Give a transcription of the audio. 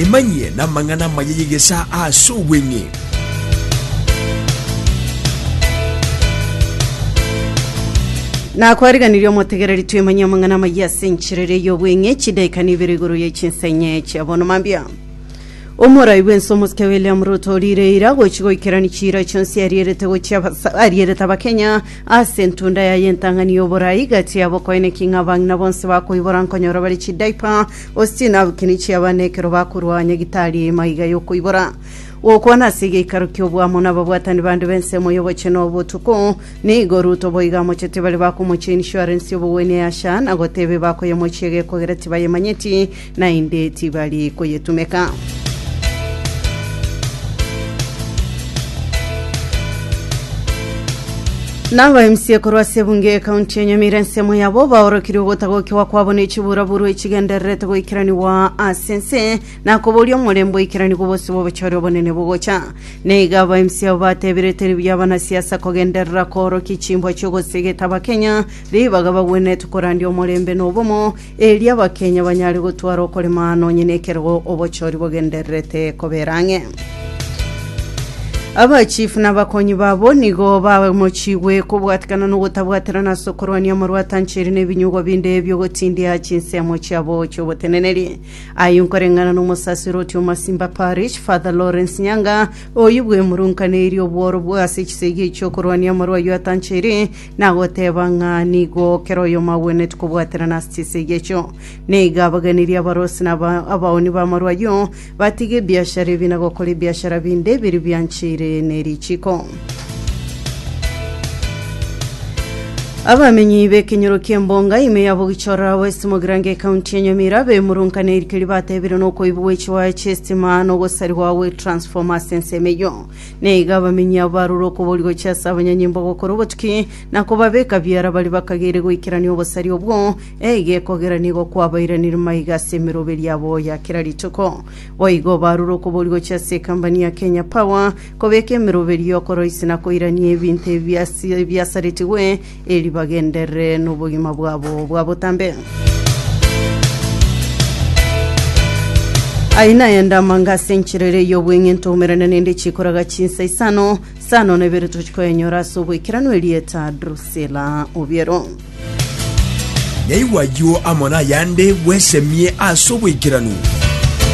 Emanyie namang'ana amaya y'egesaa ase obweng'e. nakwariganirie omotegereri twemanye amang'ana amaya ase enchera eria y'obweng'e chidaika na ibere igoro ya chinsa enye chia bono mambia omorai bwense omosike william ruto orire ira gochi goikerani chiira chionsi arierete gochia abasa- arierete abakenya Ase entunda yaye entang'ani y'oborai igati yabo koine king'abang' na bonsi bakoibora nkonyora bare chidiaper, gose chinabukini chiaba na ekero bakorua nyagitari eima iga y'okoibora. Gokwana ase egeikaro ki'oboamo nababwatani bande b'ensemo y'obochie na obotuko, nigo Ruto boiga amochete bare bakomochia insurance y'obogwenia ya SHA na goteba ebakoyemochia iga ekogera tibayemanyeti, Naende tibari koyetumeka. Nabo emsie korwa ase ebunge ekaunti ya Nyamira ensemo yabo baorokire ogotagokiwa kwabo ne chiburaburu echigendererete goikeraniwa ase ense na koboria omorembe oikeranigwe obose bw'obochore obonene bogocha. Neiga aba emsie abo batebire teri buya abanasiasa kogenderera koorokia chimbwa chi'ogosegeta Abakenya ribaga bagwenerete korandia omorembe na obomo Erio abakenya banyare gotwara okorema nonye nekerogo obochori bogendererete kobera ang'e. Abachifu na abakonyi babo nigo bamochigwe kobwatikana nogotabwaterana ase okorwania amarwata anchiri na ebinyugwa binde biogotindia chinsemo chiabo chioboteneneri. Ayio nkoreng'ana nomosasiro otia Omasimba Parish, Father Lawrence Nyanga, oyio bwemurunkaneirie obworo bwa ase chisegi chiokorwania amarwa ayio atanchiri Nagoteba ng'a nigo kera oyomo agwenereti kobwaterana ase chisegi echio. Na igo abaganirie abarosi na aba- abaoni b'amarwa ayio, batige ebiashara ebi na gokora ebiashara binde ebiria biancheire ne richiiko. Abamenyi b'ekenyoro ki'embonga ime ya Bogichora, West Mogrange, County ya Nyamira, abemurunkana erikeri bateebire nokoibwa gwe chiwaya chi'esitima na ogosarigwa gwe transformer ase ensemo eyio. na iga abamenyi abo barure okoboria gochia ase abanyanyimbo gokora obotuki na kobabeka biara baria bakageire goikerania obosari obwo, eiga ekogerania igo kwabairanire maiga ase emeroberi yabo ya kera rituko. Boigo barure okoboria gochia ase ekambani ya Kenya Power kobeka emeroberi y'okoroisia na koirania ebinto ebi ase- ebiasaretigwe Erio bagenderere nobogima bwabo bwa botambe. Aye naye ndamanga ase enchera ere y'obweng'ento omerane nende chikoraga chinsa isano, sano na ibere tochi koyenyora ase oboikeranu erieta Drusila Obiero. Naigwa ayio amo nayande bwesemie ase oboikeranu.